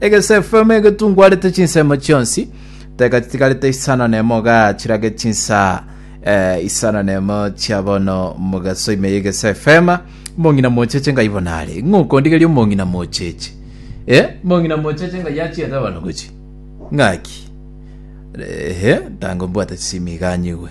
Egesefemu egetungwarete chinsemo chionsi, teka chitigarete isano nemo igaa chirage chinsa eh, isano nemo chia bono mogaso ime y'egesefema. Omong'ina mocheche ngai bono are. Ng'a okondigeria omong'ina mocheche. Eh, omong'ina mocheche ngai achiete bono gochi. Ng'aki? Ehe, tango mbwate chisimi igaa nyigwe.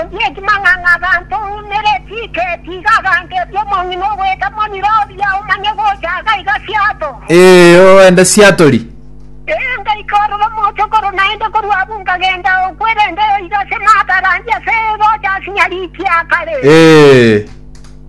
Onde ekimang'ang'a abanto oumere, tiike, tiga abanto ebi'omong'ina ogoeta moniro oria, omanye gocha aka iga siato. Ee, oende siatori. Ee, ngaika ororo mochokoro, naende korwa abwo nkagenda okwerenta iga ase maata arandia ase egocha asinyarikia kare. Ee.